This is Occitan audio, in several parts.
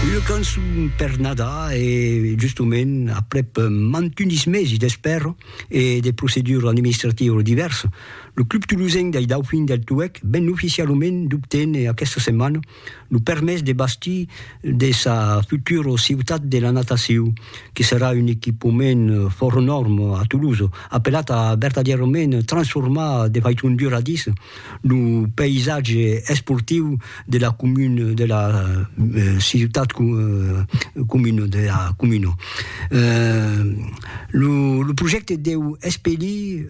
Una cançon per Nadar e justement aprèp mantunis mesi d'espèra e de proceduras administrativas divèrsas, lo Club Tolosenc dei Daufins del Tuèlh ven oficialament d'obténer aquesta setmana lo permés de bastir de sa futura Ciutat de la Natacion, que serà un equipament fòrt nòrme a Tolosa, apelat a vertadièrament transformar de faiçon duradissa Lo païsatge esportiu de la comuna de la ciutat comuna de la comuna. Lo lo projècte deu espelir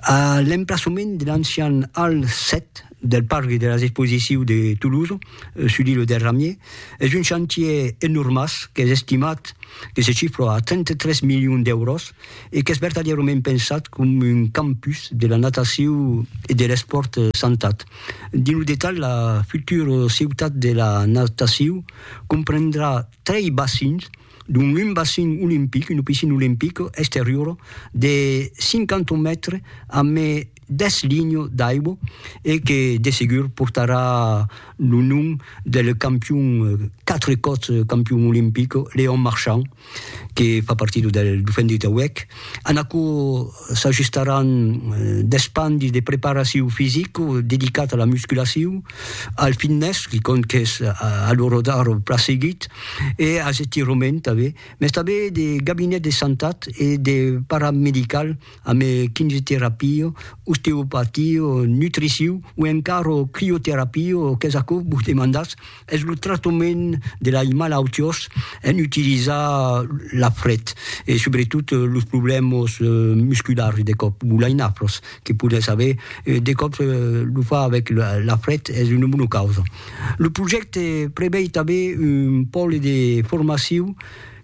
a l'emplaçament de l'ancian Hall 7 del parc de las exposicius de Toulouse sus l'île del Ramier. Es un chantier enormàs qu'es estimat que se chifra a 33 milions d'èuros. e qu'es vertadièrament pensat com un campus de la natacion e de l'espòrt santat. Dins lo detalh, la futura ciutat de la natacion comprendrà trei bacins, dont un bacin olimpic, una piscina olimpica exteriora de 50 mètres, amé deth linho d'Aibo e que de segur portarà lo nom del campion, quatre còps campion olimpic, Léon Marchand, que fa partida del Dauphin de Tauèc. En aquò s'ajustaràn deth pan de preparacion fisica dedicat a la musculacion, al fitness, que còm qu'es a l'ora d'ara plan seguit, e as estirament tanben, mès tanben de gabinet de santat e de paramedical, ame quimioterapio, osteopatio, nutriciu o encaro crioterapio, qu'es aquo vos demandatz, es lo tractament de lai malautiós en utilizar la fret e subretot los problèmas musculars de còp, o lai nafros que podètz aver, de còp lo far avèc la fret es una bona causa. Lo projècte prevei tanben un pòle de formaciu,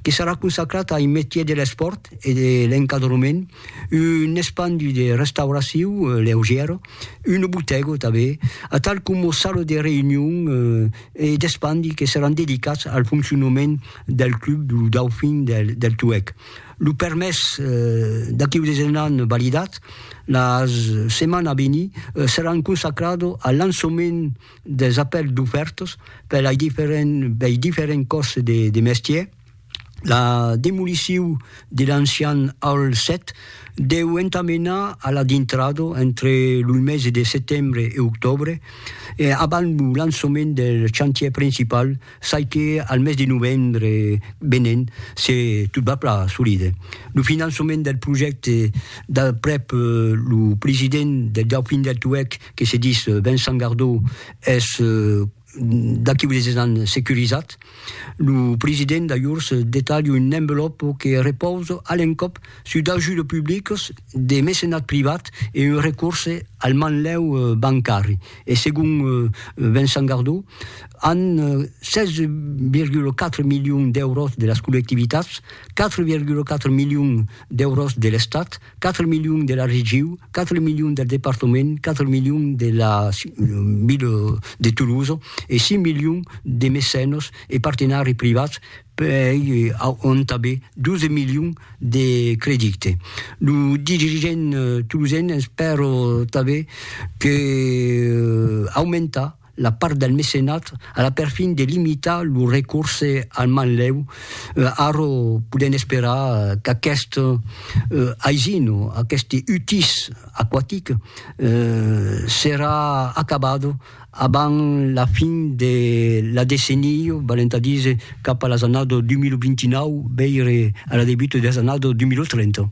que serà consacrat ai metier de l'espòrt e de l'encadrement, un espandi de restauraciu leugièra, una botèga tanben, atal coma sala de reünion e d'espandi que seràn dedicats al foncionament del club du Dauphin del Tuèg. Lo permés d'aqueu desenhan validat, la setmana a venir seràn consacrada al lançament. des apèls d'ofèrtas per lei diferents lei diferents còrses de de mestièr, la demoliciu de l'ancian Hall 7 deu entamenar a la dintrada entre loi mesi de setembre e octòbre e abans lo lançament del chantièr principal çai que al mes de novembre venent se tot va plan solide. Lo finançament del projècte d'aprèp lo president del Dauphin del Tuèlh que se dis Vincent Gardó es d'aqui unes 10 ans securizat, lo president d'ajors detalha un envelòpo que repausa a l'encòp sus d'ajudes publicas, de mecenat privat e un recorse al manlèu bancari. E segon Vincent Gardó, an 16,4 milions d'èuros de las collectivitats, 4,4 milions d'èuros de l'Estat, 4 milions de la regiu, 4 milions del departament, 4 milions de la ville de Toulouse e 6 milions de mecenos e partenari privats pei auntabe 12 milions de credite. Lo dirigent toulousen espèro tanbe que aumentar la part del mecenat a la perfin de limitar lo recorse al manlèu, ara podèm esperar qu'aquest aisin, aqueste utís aquatic serà acabat abans la fin de la decennia, valent a díser cap a las annadas 2029, veire a la debuta de las annadas 2030.